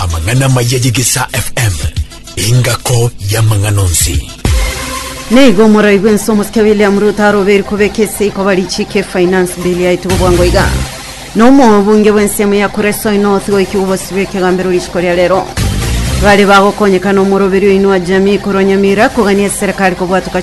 Amang'ana amaya y'Egesaa FM, engako y'amang'ana onsi. Neigo moraigwe ense omosike William Ruto aroberi kobeka eseiko barichika efinance bill yaitwe bwango iga na omobunge bw'ensemo ya Kuresoi North goiki gobosibwa ekegambero rituko ria rero bare bagokonyekana omoroberi oino wa jamii korwa Nyamira kogania eserekari kobwatuka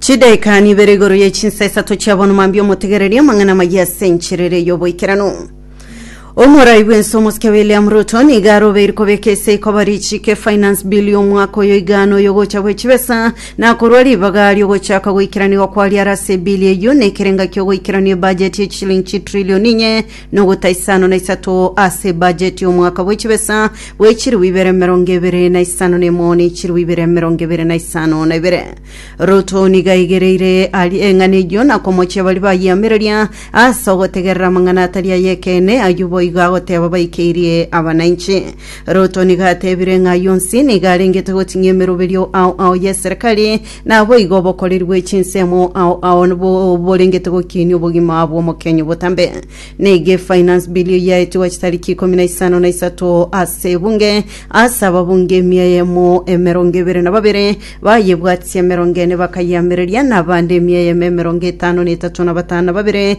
Chidaika nibere igoro ye chinsa isato chia bono mambia omotegereria amang'ana amaya ase encherere y'oboikeranu. Omorai bw'ense omosike William Ruto niga arobeire kobeka ase ikoba richiike Finance Bill y'omwaka oyo igaano y'ogocha gwe chibesa na korwa ribaga ri'ogochaka goikeraniwa kwaria are ase ebill eyio na ekerenga ki'ogoikerania ebudget ye chishilingi chitrilioni inye nogota isano na isato ase bajeti y'omwaka bwe chibesa bwe chiribu ibere emerongo ebere na isano na emo ne chiribu ibere emerongo ebere na isano na ibere. Ruto niga aigereire ari eng'ana eyio na komochia baria bayeamereria ase ogotegerera amang'ana atari ay'ekeene ayio boigo agoteba baikeirie abananchi. Ruto niga atebire ng'a ayio onsi niga arengete goting'ia emeroberio ao ao y'eserekari Naboigo obokoreri bwe chinsemo ao ao nibo borengete gokinia obogima bw'omokenyi obotambe. Nege finance bill eyaetigwa chitariki ikomi na isano na isato ase ebunge ase ababunge emia eyemo emerongo ebere na babere bayebwatisi emerongo ene bakayeamereria na abande emia eyemo emerongo etano na etato na batano na babere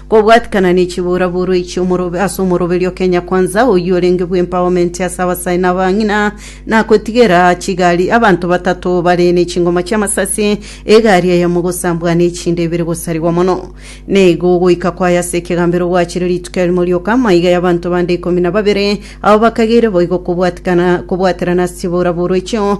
Kobwatikana ne chiboraboroi chi'omorobe ase omoroberi o Kenya Kwanza oyio orenge bw'empowerment ase abasae na abang'ina, na kotigera chigari abanto batato bare ne chingoma chi'amasasi, egari eyemo gosambwa na echinde ibere gosarigwa mono. Neigo ogoika kwaye ase ekegambero gwachire rituko erimo rioka, amaiga y'abanto bande ikomi na babere, abwo bakageire boigo kobwatikana kobwaterana ase chiboraboroi chio,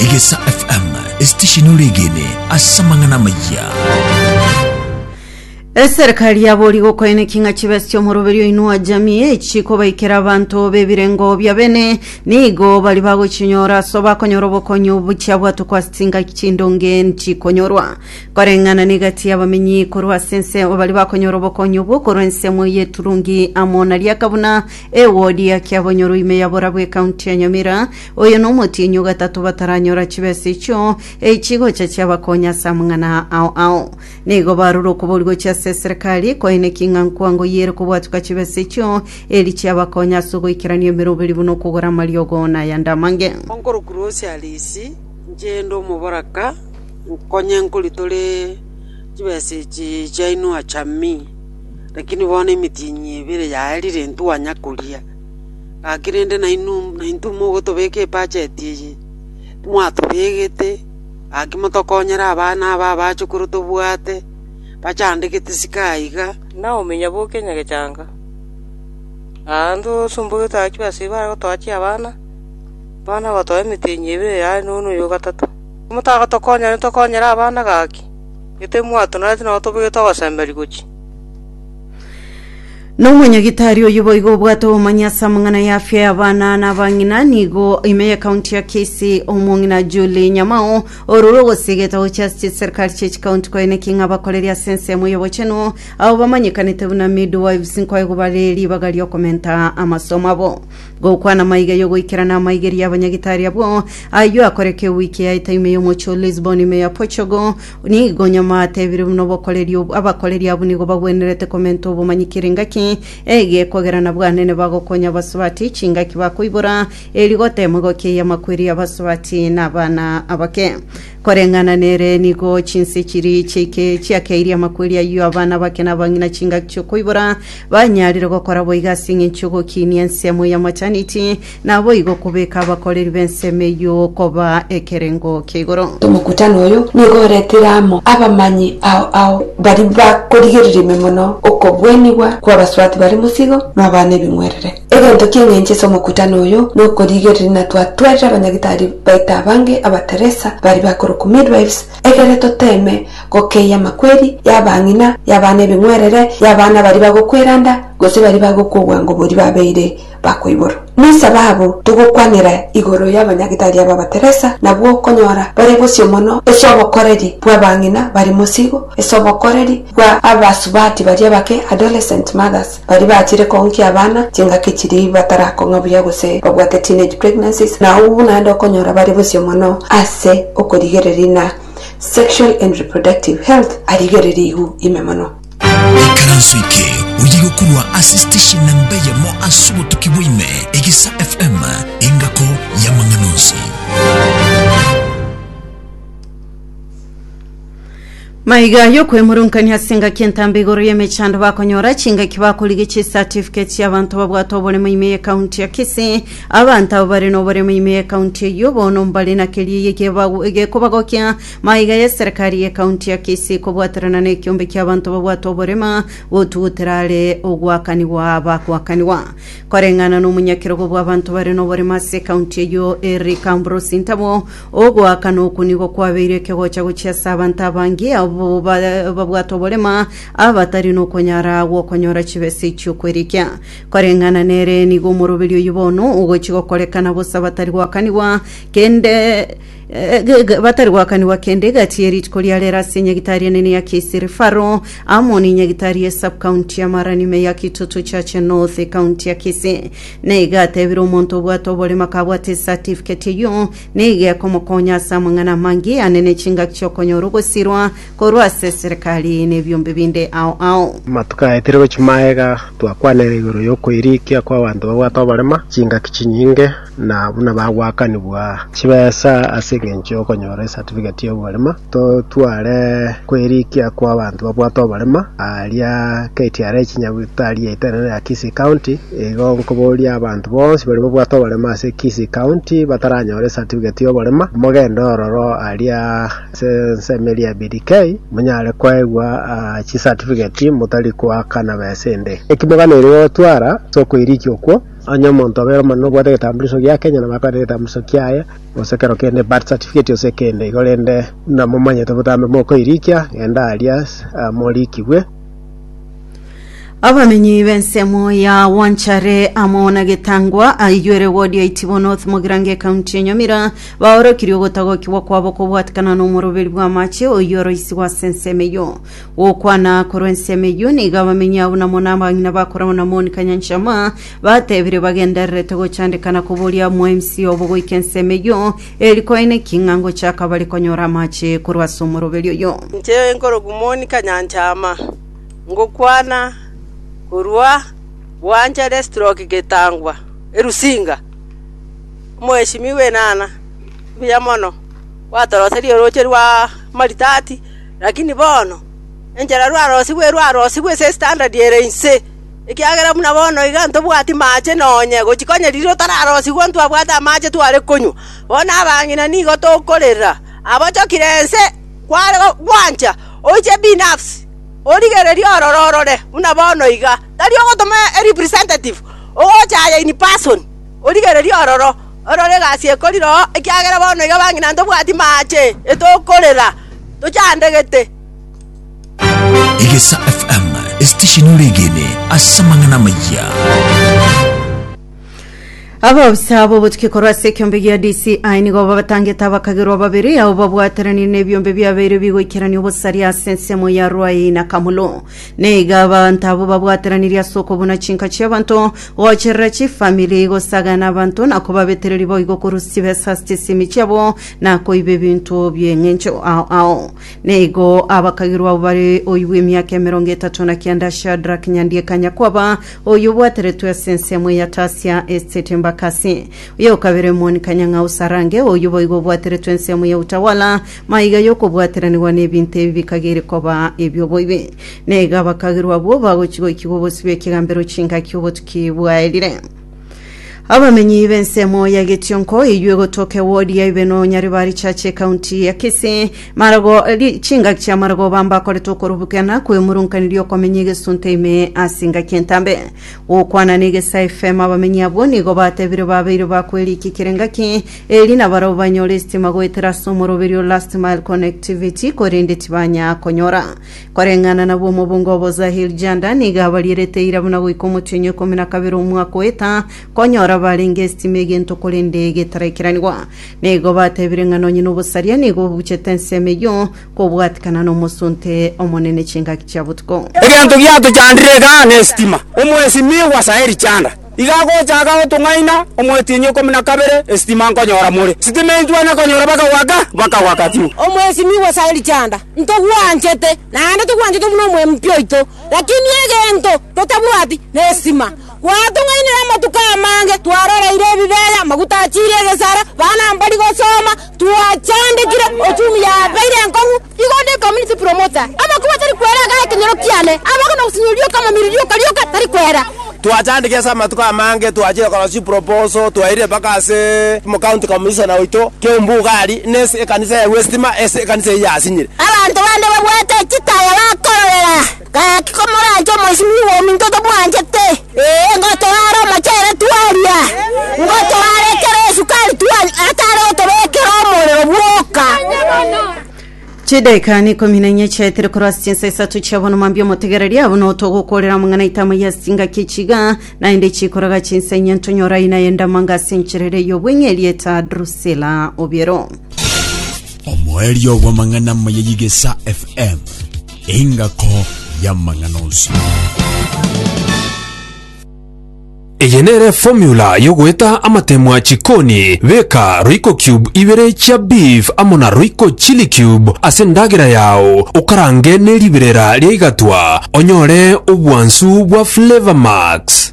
Egesa FM, esitesheni ore egene ase amang'ana amayia. Eserikari yabori gokoene king'a chibesi chomoroberi oinua jamii echi kobaikera abanto bebirengo bia bene nigo bari bagochinyora so bakonyora obokonyi obuchia bwatwa kwa singa chindonge chikonyorwa koreng'ana negati y'abamenyi korwa ase ense bari bakonyora obokonyi obwo korwa ensemo y'eturungi amo na riakabuna ewodi ya kiabonyoro ime ya borabu ekaunti ya nyamira Oyo nomotienyi ogatato bataranyora chibesa echio echigocha chiabakonya ase amang'ana ao ao. Nigo barure okobori gochia ase eserekari, koine king'a nkwango yere kobwatuka chibesa echio, eri chiabakonya ase ogoikerania emeroberi buna okogora amariogo na ayande amange. Onkorokuru ose are isi, inche inde omoboraka, nkonye nkoritore chibesa echi chiaino acha ime. Lakini bono emitienyi ebere yaye rirentwe oanya koria. Gaki rende nainwe naintwe mogotobeka ebacheti eye, timwatobegete, gaki motokonyere abana aba abachukuru tobwate, bachandegete isiko aiga. Naomi nyaboke nyagechanga, aa ndosombogetwe agachwa ase ibare gotoa chiabana, abana bagotoa emetenyi ebe eye aye nono oyo o gatato. Timotagotokonyera intokonyere abana gaki, gete timwatonoreti na otobegete ogosemberia gochia. Nomonyagitari oyo boigo obwate obomanyi ase amang'ana ya afya y'abana na abang'ina nigo ime ya kaunti ya Kisii omong'ina Julie Nyamao orure ogosiga egetabu chia ase chiserikari chia chikaunti koene ki ng'a bakoreri ase ensemo y'obochenu abo bamanyekanete buna midwives nkoegwa bare ribaga riokomenta amasomo abo gokwana maiga y'ogoikerana amaigeri y'abanyagitari abwo aywo akorekeo wiki yaete ime y'omochie o Lisbon ime ya Portugal Nigo nyuma atebire buna obokoreri obo, abakoreri abwo nigo bagwenerete komenta obomanyi kera engaki ege, ekogera na bwanene bagokonya abasubati, chingaki bakoibora, e rigoto emo egokieyia amakweri y'abasubati na abana abake. Koreng'ana nere nigo chinse chiri chiaike- chiakeirie amakweri ayio abana abake na abang'ina chingaki chi'okoibora, banyarire gokora boigo ase eng'encho y'ogokinia ensemo y'amachaniti, Naboigo kobeka abakoreri b'ensemo eyio koba ekerengo kia igoro. Omokutano oyo nigo oretire amo abamanyi ao ao baria bakorigereria ime mono okobwenigwa kw'abaswaati bare mosigo na obaana ebing'werere. Egento ki'engencho ase omokutano oyo nokorigereria ng'a twatwerire abanyagitari baito abange Abateresa baria bakorokwa midwives egere toteeme gokeyia amakweri y'abang'ina, y'abaana ebing'werere, y'abaana baria bagokwera nda, gose baria bagokwa obwango boria babeire bakoiborwa. Noisa babo togokwanera igoro y'abanyagitari aba Bateresa nabwo okonyora bare bosio mono ase obokoreri bw'abang'ina bari mosigo, ase obokoreri bwa abasubati baria bake, adolescent mothers, baria bachire koonkia abana chingaki chiria batarakong'a buya gose babwate teenage pregnancies, na abwo naende okonyora bare bosio mono ase okorigereria na sexual and reproductive health arigereria igu ime mono. Ekaranso eke oye gokorwa ase station namba eyemo ase obotuki bwaime, Egisa FM, engako y'amang'ana onsi. Maiga yokwemoronkania ase engaki entambe igoro y'emechando bakonyora chingaki bakorigia chicertificate chi'abanto babwate oboremo ime y'ekaunti ya Kisii abanto abo bare noboremo ime y'ekaunti eyio bono mbare na keria eye gebago- gekobagokia Maiga y'eserekari y'ekaunti ya Kisii kobwaterana n'ekiombe ki'abanto babwate oborema gotugutera are ogoakanigwa bagoakanigwa. Koreng'ana nomonyakerogo bw'abanto bare noborema ase ekaunti eyio Eric Ambrose Ntabo, ogoakana okwo nigo kwabeire ekegocha gochia ase abanto abange abwo babwate oborema abatari nokonyara gwokonyora chibesa echi'okwerikia. Koreng'ana nere nigo omoroberi oyio bono ogochi gokorekana bosa batari goakanigwa kende Eh, ge- ge- batari gwakanigwa kende egati ye rituko ria rero ase enyagitari enene ya Kisiri Faro Amoni enyagitari ye subcounty ya Mara nime ya Kitutu Chache North ekaunti ya Kisii na iga atebire omonto obwate oboremo akabwate esatifiketi eyio na iga ekomokonya ase amang'ana amange anene chingaki chi'okonyora ogosirwa korwa ase eserekari nebiombe binde ao ao. Amatuko aetire gochia magega twakwanire igoro yokoirikia kwabanto babwate oborema, chingaki chinyinge, na buna bagwakanigwa chibesa ase engencho yokonyora esatifigeti yoborema, totware koirikia kwabanto babwate oborema aria KTRA chinyabutari yaetenene ya Kisii County. Igo nkoboria abanto bonsi baria babwate oborema ase Kisii County bataranyora esatifigeti yoborema, mogende ororo aria Ase ensemo eria ya BDK, monyare koegwa chisatifiketi motari koakana besa ende. Naki moganeire gotwara ase okoirikia okwo, onye omonto obe ore omonene obwate egetambulisho gia Kenya nabo akwane egetambulisho kiaye, gose kero kende, birth certificate gose ekende igo, rende buna momanyete botambe mokoirikia, genda aria moriikigwe. abamenyi b'ensemo ya wanchare amo na getangwa aigwere wodi ya itibo north mogirango ekaunti ya nyamira baorokirie ogotagokigwa kwabo kobwatikana n'omoroberi bw'amache oyio oroisigwa ase ensemo eyio gokwana korwa ensemo eyio nigo abamenyi abo namo n'abang'ina bakoragwa na monica nyanchama batebire bagendererete gochandekana koboria mwa mc obo goika ensemo eyio eri koeneki ng'a ngochaka bare konyora amache korwa ase omoroberi oyio Inche nkoroku Monica Nyanchama. ngokwana korwa Bwanchare Stroke Getangwa, Erusinga. Omoeshimiwa enana, mbuya mono gwatoroserie orooche rw'amaritati, lakini bono enchera rwarosigwe erwarosigwe ase estandadi ere inse, ekiagera buna bono iga ntobwati maache nonya gochia onye riria otararosigwe ntwabwate amache tware konywa. Bono abang'ina nigo tokorera, abochokire ense. Kware gwancha, oiche ebinafsi, origererie ororo orore buna bono iga. Tari ogotoma e representative, ogocha aye in person, origererie ororo, orore egasi ekori roo, ekiagera bono iga bang'ina ntobwati maache, etokorera, tochandegete. Egesaa FM, esitesheni ore egene ase amang'ana amayia. Abaofisa b'obotuki korwa ase ekiombe gia DCI nigo babatangete abakagerwa babere ao babwateranire n'ebiombe biabeire bigoikerania obosaria ase ensemo ya Ruai na Kamulu. Neiga abanto abwo babwateranirie ase okobuna chinka chi'abanto, gocherera chifamili, gosagana abanto na kobabetereria boigo korwa chibesa ase chisimi chiabo na koiba ebinto bi'eng'encho ao ao. Neigo abakagerwa abo bare oibwa emiaka emerongo etato na kianda Shadrack Nyandieka Nyakwaba, Oyio obwateretwe ase ensemo eyatasia esete mbaka ase oyo o kabere omoni kanyang'au sarange, oyio boigo obwateretwe ensemo ya utawala, maiga y'okobwateranigwa n'ebinto ebi bikagiri koba ebi'oboibi. Naiga abakagerwa abwo bagochi goikigwa obosio bw'ekegambero chingaki obotuki bwaerire. Abamenyi b'ensemo ya Getionko eyio egotoka ewodi ya Ibeno Nyaribari Church ekaunti ya Kisii marago ri- chingaki chia marago bamba akorete okorubukana kw'emurunkaniria okomenya egesunte ime ase engaki entambe gokwana na egesa FM abamenyi abwo nigo batebire babeire bakweriikikera engaki eri na barabwo banyore estima goetera ase omoroberio last mile connectivity korende tibanya konyora Koreng'ana na bw'omobunga obo Zahir Janda nigo abarierete eira buna goika omochie ikomi na kabere omwaka oeta, konyora barenge esitima egento korende getaraikiranigwa. Nigo batebire ng'a nonye nobosaria nigo bobuchete ensemo eyio, kobwatikana nomosonte omonene chingaki chia botuko. Egento giatochandire igaa nesitima. Omwesimigwa Zahir Janda Iga agochaka gotong'aina omwetienyi ikomi na kabere, esitima nkonyora more. Sitima enchwa nakonyora bakagwaka, bakagwaka fiu. Omwesimigwa Sauli Chanda, ntogwanchete, naende togwanchete buna omwempi oito, lakini egento totabwati nestima. Gwatong'ainire amatuko amange, twaroreire ebibeya, amaguta achiire egesara, bana mbari gosoma, twachandekire, ochumi yabeire enkong'u, Igo onde Community Promoter, amakubo atari kwera agae ekenyoro kiane, abagwe na ogosinyorwa rioka amamiri rioka rioka tari kwera. Twachandeke ase amatuko amange, twachire korosia chiproposal, twairire mpaka ase County Commissioner oito, Kiombu Ugali, nase ekanisa ya Westima, ase ekanisa eyio yasinyire. Abanto bande babwate chitaya bakororera. Gaki komoranche omoisimi bw'ominto tobwanchete, ee, ngotoare omochere twaria, ngotoare ekero esukari twanywa, atare gotobekera omorero bwoka. chidaekani ikomi na enye chiaetire korwa ase chinsa isato chia bono mambia omotegereri abo notogokorera amang'ana aitama ya ase engaki echiga naende chikoraga chinsa enye ntonyora aina ye ndamanga ase enchera ere y'obweng'e erieta drusila obiero Omoerio bw'amang'ana amaya y'Igesa FM. Engako y'amang'ana onsi. Eye nere formula yogoeta amatemwa chikoni, beka royco cube ibere chia beef amo na royco chili cube ase ndagera yao okarange neribirera riaigatwa onyore obwansu bwa flavor max.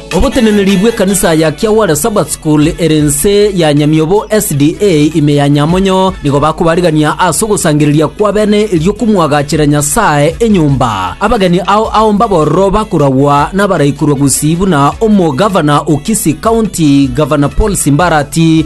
Oboteneneri bw'ekanisa ya Kiawara Sabbath School ere inse ya Nyamiobo SDA ime ya Nyamonyo nigo bakobarigania ase ogosangereria kw'abene erio komwagachera Nyasae enyomba. Abageni ao ao mbabororo bakoragwa nabaraikorwa gusii buna Omogavana o Kisii County, Gavana Paul Simbarati,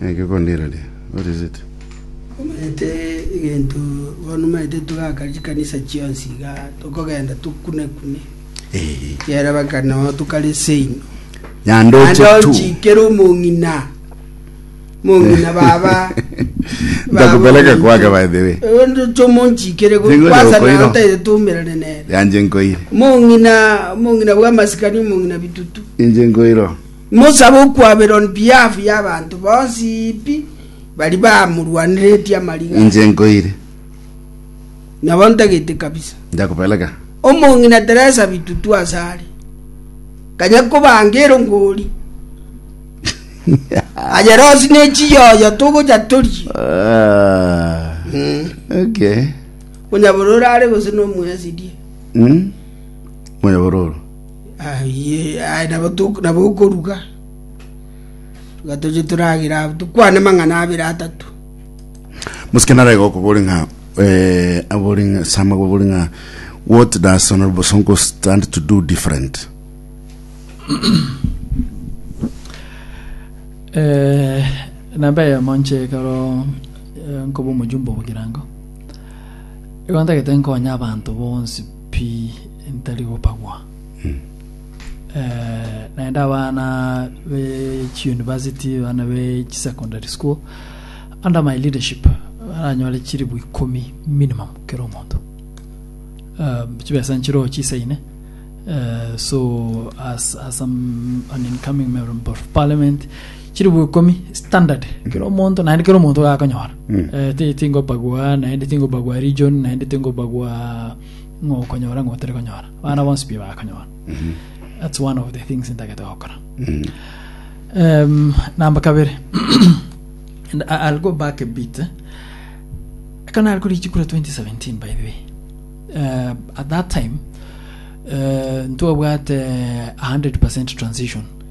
Naki okondiraria? What is it? Omanyete egento bono omanyete togaka chikanisa chionsi iga tokogenda tokune-kune Eh. kiagera baka nao tokare seino Yande oche naende tu. ochikere omong'ina mong'ina baba Ndakupeleka kwake, by the way. ndoche omonchikere Ting'oja kwasa okoira. nao taire toumerane nere Yanje nkoire. mong'ina mong'ina bwa masikani omong'ina bitutu Inche nkoiro. Mosabe okwaberwa on behalf y'abanto bonsi pi baria bamorwaneretie amariga aya. Inche nkoire. Nabo ntagete kabisa. Ndakopeleka. Omong'ina Teresa bitutu ase are. Kanya kobanga erongori. Aye Rose ne chiyoyo togocha torie. Ah. Okay. Onyabororo are gose nomoyasirie. Mm. Moyo bororo. Aye, aye, nabo tok- nabo okoruga iga toche toragere abwo tokwane mang'ana abere atato Musikana arega okobori ng'a eh, abori ng'a Sam akobori ng'a what does Honorable Sonko stand to do different? Eh, namba eyemo nche ekero eh, nkoba omojumbe obogirango igo ntagete nkonye abanto bonsi Pi ntari gopagwa. Eh, naende abana be chiuniversity abana be chisecondary school under my leadership baranyore chiribu ikomi minimum kera omonto um, chibesa nchiro chisaine uh, so as, as I'm an incoming member of parliament chilifu ikomi standard kero omonto naende kero omonto gakonyora Eh, ti- tingobagua naende tingobagua region naende tingobagua ng'o okonyora ng'o otari konyora bana bonsi pi bakonyora that's one of the things ntagete gokora um, namba kabere and I- i'll go back a bit eh. kana ari kuri chikura 2017 by the way uh, at that time uh, ntwabwate 100 transition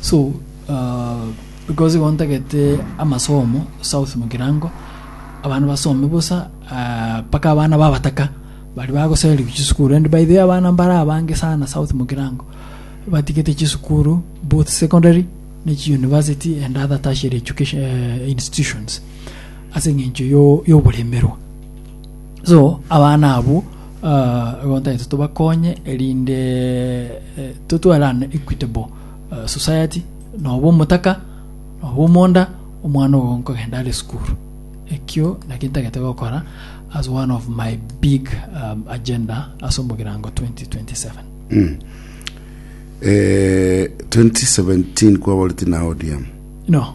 So uh, because igo ntagete amasomo south mukirango abana basome bosa uh, paka abana babataka bari bagoseri chisukuru and by the way abana mbara abange sana south mukirango batigete chisukuru both secondary ne chi university and other tertiary education uh, institutions ase eng'encho yo- y'oboremerwa So abana abwo ah, igo ntaete tobakonye erinde eh, totware an equitable ah, society noba omotaka noba omonda omwana ogo nkogenda are sukuru ekio naki ntagete gokora as one of my big um, agenda ase omogirango 2027 Eh, 2017 kwaboreti na ODM no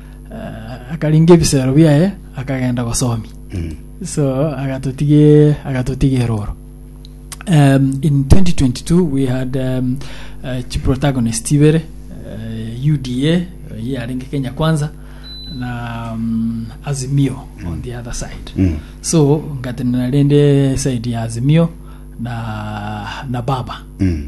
akaringa ebisero biaye akagenda gosomia Mm. so agatotige agatotige eroro um, in 2022 we had um, uh, chiprotagonist ibere uh, uda ye yarenge kenya kwanza na um, azimio on the other side Mm. so ngatenena rende side ya azimio na na baba Mm.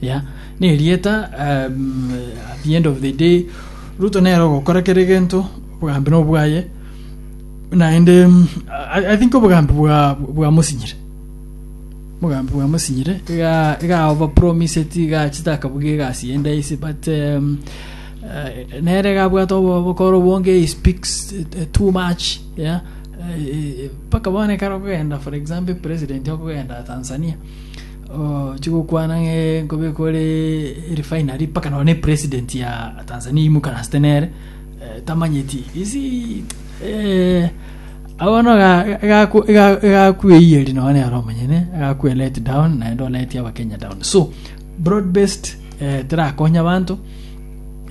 Yeah. Nerieta um, at the end of the day Ruto nere ogokora kere egento obogambi no bwaye naende um, I, I think obogambi bwa bwa musinyire obogambi bwa musinyire iga iga over promise it iga chitakabuga egasi yende isi but um, uh, nere gabwata obo- obokoro bonge he speaks uh, too much yeah Eh, eh, paka bone kare okogenda for example president okogenda Tanzania Oche gokwana ng'a nkobe kore refinery mpaka nonye president ya Tanzania imukaransete nere eh, tamanyeti isi eh, abono gakweyeri nonye nere omonyene gakwe let down naende oleti abakenya down so broad based eh, terakonya abanto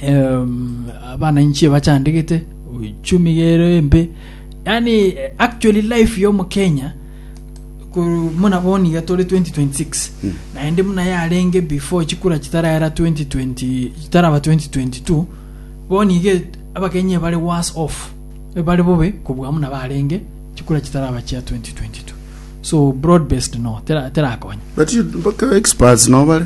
um, abananchi bachandegete uchumi gero embe yani eh, actually life yo mukenya Korwa buna bono iga tore 2026 Mm. naende buna yarenge before chikura chitarera 2020 chitaraba 2022 bono iga abakenya ebare worse off ebare bobe kobua buna barenge chikura chitaraba chia 2022 so broad based no tera- terakonye But you- mpaka experts nobare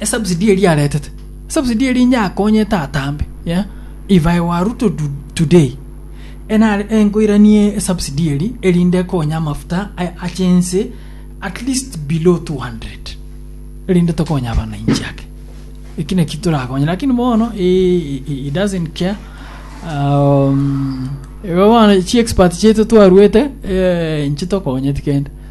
esubsidy eria aretete esubsidy eria inye akonye tatambe yeah? if i were ruto to, today enare enkoiranie esubsidy eri erinde ekonye amafuta a- ache ense at least below 200 erinde tokonye abananchi ake eki naki torakonye lakini bono i- i- i- he doesn't care um, igo bono chi expert chiaito twarwete eh, inche tokonyeti kende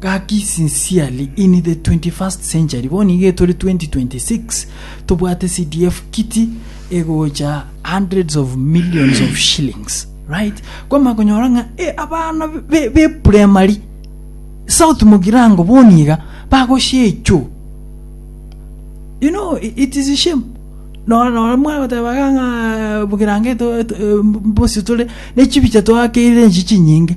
Gaki sincerely in the 21st century bono iga tore 2026 tobwate CDF kiti egocha hundreds of millions of shillings right kwama konyora ng'a e abana be, be primary south mogirango bono iga bagoshecho you know i- it is a shame nora nora mwana goteba ng'a bugirango eto- eto- eh, mbosi tore nechibicha twakeire nchi chinyinge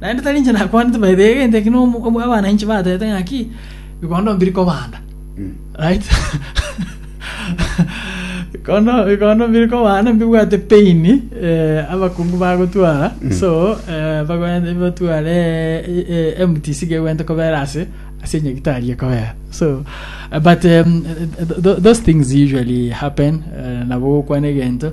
Naende tari inche nakwanete, baita egento eke nigo abananchi batebete ng'aki, Bikondo mbiri kobanda. Right? Bikondo bikondo mbiri kobanda mbibwate pain eh, abakungu bagotwara. So eh, bagwente batware eh, eh, MTC gegwente kobera ase ase nyagitari ekobera. So eh, but um, th- th- those things usually happen eh, nabo gokwana egento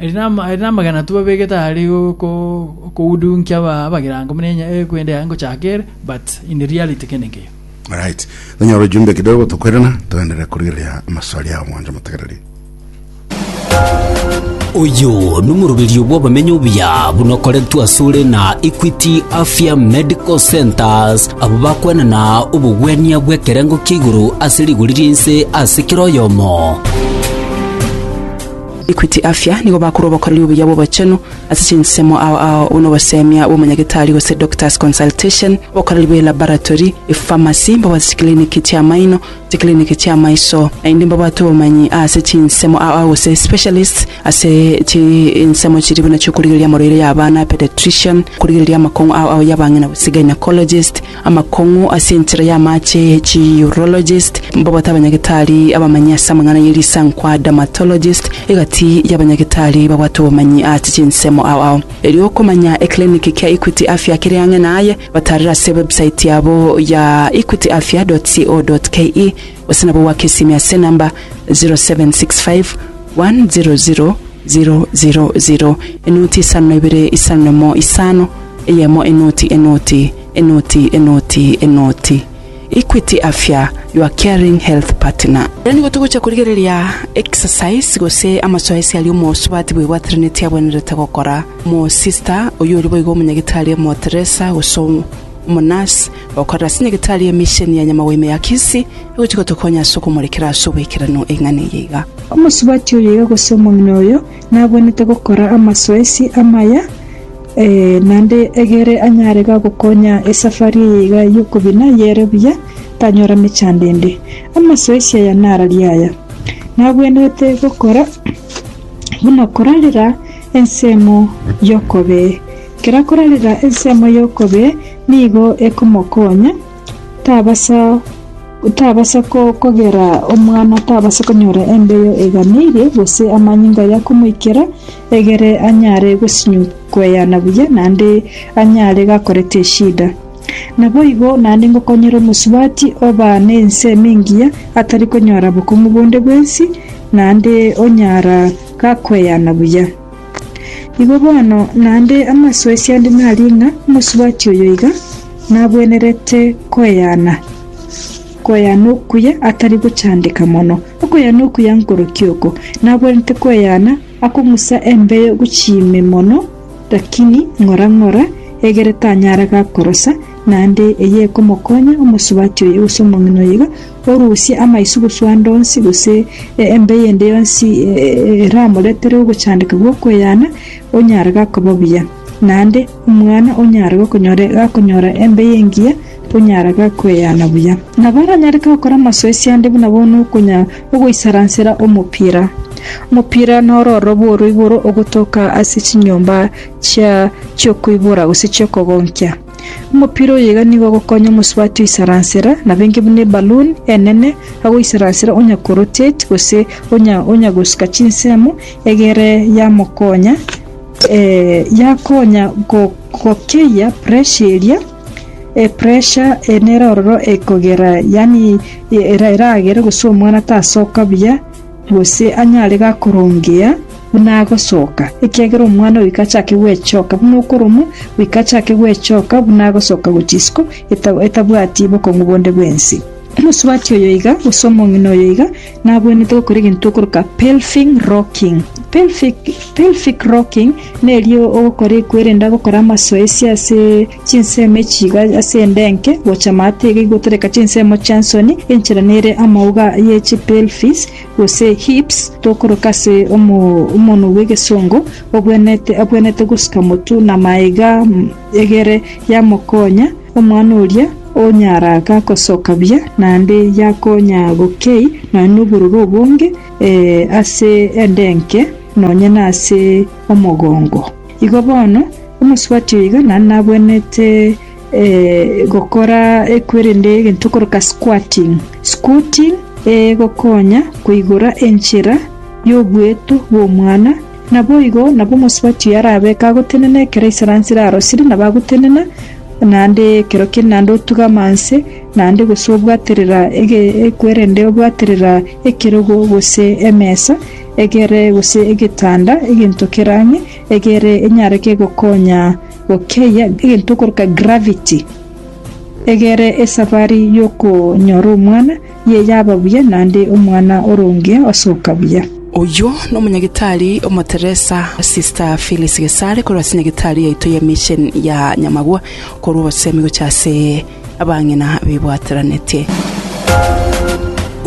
Eri nama- eri namagena tobabegete are go- go- gokoudunkia aba- abagerango buna enya- eh, kwende yaye ngochaka ere, but in reality kende nkeiyo. Alright. Nonyora ujumbe kidogo tokwerana toenderere korigereria amaswali ao mwancho motegereri. Uyu ni omoroberio bw'abamenyi obuya buna okoretwe asore na Equity Afya Medical Centers abo bakwenana obogwenia bw'ekerengo kia igoro ase rigori ri'ense ase kera oyomo. Equity Afya nigo bakorwa obokoreri obuya bw'obochenu ase chinsemo ao ao buna obosemia bw'omonyagetari gose doctor's consultation, obokoreri bw'elaboratory, epharmacy, mbabwate chikiliniki chi'amaino, chikiliniki chi'amaiso, naende mbabwate obomanyi ase chinsemo ao ao gose specialists ase chinsemo chiria buna chi'okorigereria amarwaire y'abana, pediatrician, okorigereria amakong'u ao ao y'abang'ina gose gynaecologist, Amakong'u ase enchera y'amache, Chi-urologist, mbagote abanyagetari abamanyi ase amang'ana ye risankwa, Dermatologist, egati y'abanyagetari babwate obomanyi ase chinsemo ao ao. Erio okomanya ekiliniki kia Equity Afya kere ang'e naye, batarera ase ewebsite yabo ya equityafya.co.ke gose nabo goaka esimi ase enamba 0765100000, enoti isano na ibere isano na imo isano, eyemo enoti enoti. Enoti, enoti, enoti. Equity Afya, your caring health partner. Rero nigo togocha korigereria exercise gose amasoesi aria omosubati bwebwatraneti abwenerete gokora. Omosister oyio ore boigo omonyagitari omoteresa gose omonurse okorera ase nyagetari y'emisheni ya Nyamagwime ya Kisii egochia gotokonya ase okomorekera ase obaikeranu eng'ana eye iga. Omosubati oyo iga gose omong'ina oyo Nagwenerete gokora amasoesi amaya, ee, naende egere anyare gogokonya esafari eye iga y'okobina yere buya, tanyora mechandende. Amasoesi aya nararia aya, nagwenerete gokora buna okorarera ensemo y'okobee. Kera korarera ensemo y'okobee nigo ekomokonya. Tabasa kogera omwana, tabasa konyora embeyo eganeirie, gose amanyinga aria komoikera, egere anyare kweyana buya, naende anyare gakorete eshida. Naboigo naende ngokonyere omosubati oba nense ime engiya, atari konyora bokong'u bonde bwensi, naende onyara gakweyana buya. Igo bono naende amasoesi ande naria ng'a omosubati oyo iga nabwenerete koeana, koeana okuya atari gochandeka mono. Okoeana okuya nkoroki oko? Nabwenerete koeana akong'usa embeyo gochia ime mono, lakini ng'ora ng'ora, egere tanyara gakorosa, naende eyio ekomokonya omosubati oyo gose omong'ina oyo iga. Orusie amaiso goswa ande onsi, gose embe eyende yonsi eramoretere ogochandeka gw'okweyana, onyare gakoba buya. Naende omwana onyare gokonyora gakonyora embe y'engiya, onyare gakweyana buya. Nabo oranyare gokora amasoesi ande buna bono okonya ogoisaransera omopira. Omopira noro ororo oro igoro ogotoka ase chinyomba chia chi'okoibora gose chi'okogonkia. Omopira oyo iga nigo ogokonya omosubati oisaransera, nabo enke buna ebaluni enene, agoisaransera onya korotate gose onya onya gosuka chinsemo egere yamokonya yakonya go gokeyia pressure eria, pressure nero ororo ekogera yaani eragere gose omwana tasoka buya. gose anyare gakorongea buna agosoka, ekiagera omwana oyo ikachake gwechoka buna okoromwa, goika achake gwechoka buna agosoka gochia isiko etabwati bokong'u bonde bw'ense. Omosubati oyo iga, gose omong'ina oyo iga, nabwenerete gokora egento tokoroka pelving rocking. Pelvic rocking neri ogokora ekwerenda gokora amasoesi ase. Chinsemo echi chiga ase endenke gocha maate iga igotereka chinsemo chi'ensoni, enchera nere amauga ye chipelvis, gose hips, tokoroka ase omonwa bw'egesongo, obwenerete obwenerete gosika motwe na maega egere yamokonya omwana oria onyara ga gosoka buya, naende yakonya gokei nonya nobororo obonge ase endenke nonya nase omogongo. Igo bono, omosubati oyo iga naende nabwenerete gokora ekwerende egento okoroka squatting. Squatting egokonya koigora enchera y'obueto bw'omwana. Naboigo nabo omosubati oyo arabe kagotenena ekero esaransi erarosire nabo agotenena naende ekero kende naende otuge amanse naende gose obwaterera ekwerende obwaterera ekerogo gose emesa. egere gose egetanda, egento kerang'e egere enyare kegokonya gokeyia egento okoroka gravity egere esabari y'okonyora omwana ye yaba buya naende omwana oronge osoka buya. Oyio nomonyagitari omoteresa Sister Phyllis Gesare korwa ase nyagetari yaito ya mission ya Nyamagwa korwa obosemi gocha ase Abang'ina bibwateranetie.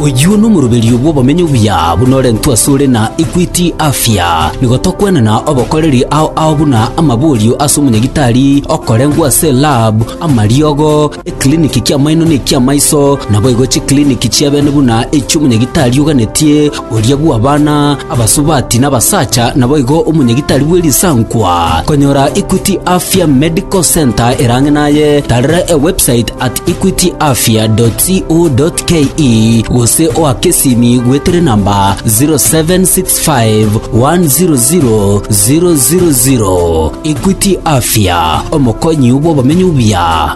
Oyio nomoroberio bw'obomenyo obuya buna orentwe asore na Equity Afya. Nigo tokwenana obokoreri ao ao buna amaborio ase omonyagitari okorengwa ase lab, amariogo, ekiliniki ki'amaino na eki'amaiso, naboigo chikiliniki chi'ebene buna echi'omonyagitari oganetie, Oria bw'abana abasubati n'abasacha naboigo omonyagitari bwe risankwa. Konyora Equity Afya Medical Centre erang'e naye, tarera ewebsite at equityafya.co.ke gose oake esimi gwetere namba 0765 100 000. Equity Afya, omokonyi bw'obomenyo buya.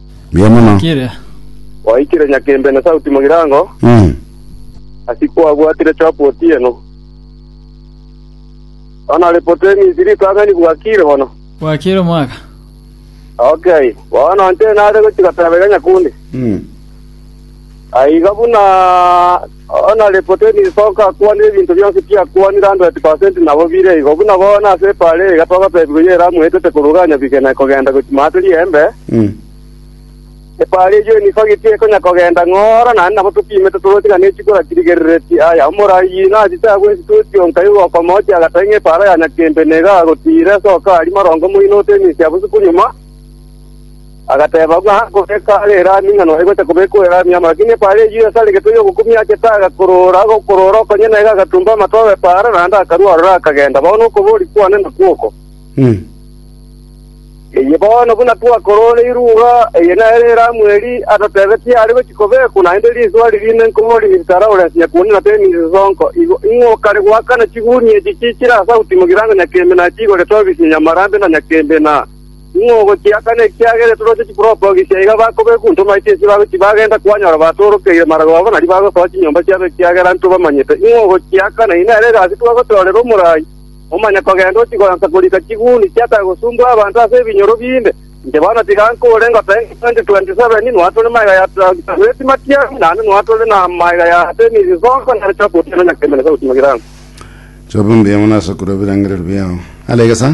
Mbuya mono. Kire. Gwaikire Nyakembe na Sauti Mugirango, Mm. asi kwabwatire chopo otieno. Bono report emisi ritang'ani bwakire bono. Bwakire omwaka. Okay, bono nche nare gochi goteba iga nyakundi. Mm. Aiga buna Oo na Repoteni togakwanera ebinto bionsi biakwanire hundred per cent nabo bire igo, buna bono ase epaara eye iga togotebigwa ye Elamu etete koruga nyabige na ekogenda gochia Maata ri'Embe, epaara eyio nigo getie ekonya kogenda ng'ora, naende nabo totiimete toroche ng'a ne chikura chirigereretie. Aye omoraai nachi tagweti toeti onkai igo okomochia agataki ng'a epaara ya nyakembe nigo agotiira, soka aria marongo moino otenyisia bosio bonyuma. Agateba, Ng'a goika are Elami, ng'a nonya gocha kobekwa Elami amo. Lakini epaara eye Yuda tare getwe y'ogokumia achete, agakorora, agokorora okonye naye, agatumba amato ag'epaara, naende akarua aroro, akagenda. Bono okobooria kwane nakwo oko. Eye bono buna twakororeirwe iga, eye nere Elamu eria atotebetie are gochia kobekwa, naende riiswa riria ime nkoboria inse tara orense nyakuoni na temi inse sonko. Igo ing'o kare goakana chigunia echi chichire ase autimo girango nyakembe na chiigorete obisi na nyamarambe na nyakembe na Ning'o ogochiakana ekiagere toroche chipropogiso iga bakobekwa intwe maito ase babe tibagenda kwanyora batorokeire marago abo nario bagosoa chinyomba chiabo ekiagera intwe bamanyete ning'o ogochiakana eye nere egasi twagotorera omorai omanye kogenda ochigoansa korika chiguni chiatare gosumbwa abanto ase ebinyoro binde inche bono tiga nkure ngoteba ng'a 2027 inwe atore magega ya Tahueti Matiang'i naende inwe atore namagega ya Artemis Nsonko nere Jacob Otieno Nyakembe na Sauti Magirano. Choba mbuya mono ase okorua ebirengererio biao. Alegesa.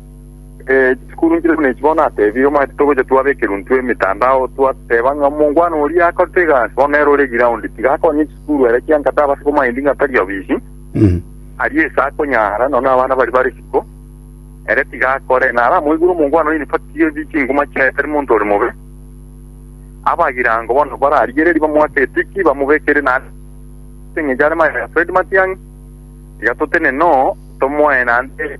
Eh, chisukuru nchire buna echi bono atebire omanyete togocha twabekera intwe emitandao twateba ng'a omongwana oria akorete egasi bono nere ore ground tiga akonye chisukuru ere kianga tabase komaindi ng'a tari obisi Mm. arie ase akonyara nono abana bari bare isiko ere tiga akore nara amoigure omongwana oyo nifatiga ebi chinguma chiaye tari monto ore mobe abagirango bono bararigereri bamoake etiki bamobekere na eng'encho are maya Fred Matiang'i tiga totenene oo tomoe naende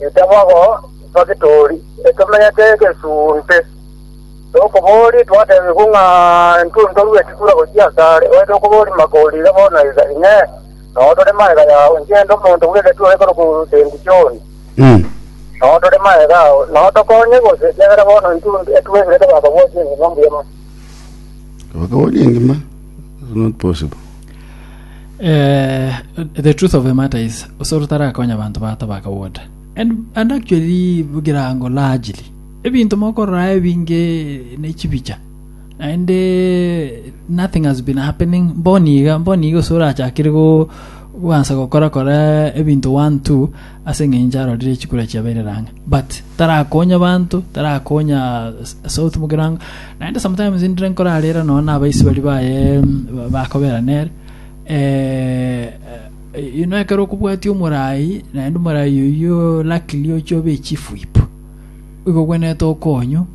Inche bogo Nfagitori, ekemenyete egesuunte. Tokobori twatebigwa ng'a intwe ntorue ekitura gochia asare, oete okobori makorire bono iga, Inee, noo tore magega yao, inche inde omonto bw'egetura ekorokwa Bentisioni? Noo tore magega ao, noo tokonye gose? Ekiagera bono intwe etwegirete bakobwatia engima mbuyemo. Bakabori engima is not possible. Eh, the truth of the matter is, osoro tarakonya banto bato baka woda. And, and actually, bugirango largely, ebinto mokorora ebinge nechibicha. And eh, nothing has been happening. Mboniga, mboniga osoro achakire go gwansa gokora kora ebinto one two ase engencho arorire chikura chiabeire rang'a but tarakonya banto tarakonya south mugirango naende sometimes ndire nkorarera nonya na abaisi bari baye mm, bakobera nere eh, eh, ino ekero okobwatia omorai naende omorai oyio luckily ochia obe chifu ipo igo gwenete okonyu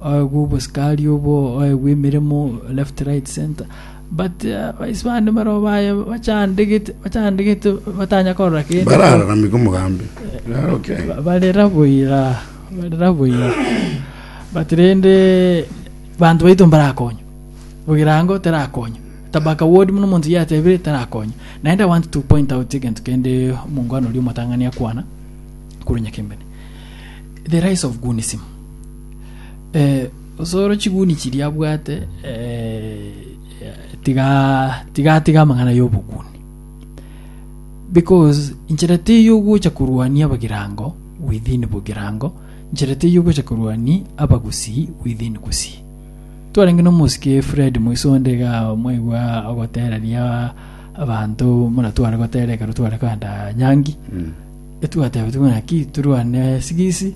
oegwe obosikari obo oegwe emeremo left right center Batia baisibani barabwo baye bachandegete, bachandegete batanya korora kende. Barararamigwe omogambi. Rero ki? Barera boira, barera boira. But rende banto baito mbarakonywa. Ogirango terakonywa. Tabaka ward muno omonto yatebire terakonywa. Naende I want to point out egento kende omongwana oria omotang'ani akwana korwa Nyakembene. The rise of goonism. Eh, Osoro chiguni chiria abwate tiga tigatiga amang'ana y'oboguni because inchera teiyo ogocha korwania abagirango within bogirango inchera teiyo ogocha korwania abagusii within gusii twarenge na omosike Fred Moisonde iga mwaigwa ogotereria abanto muna tware gotera ekero tware kogenda Nyangi mm. etwateba tuna ki turwane sigisi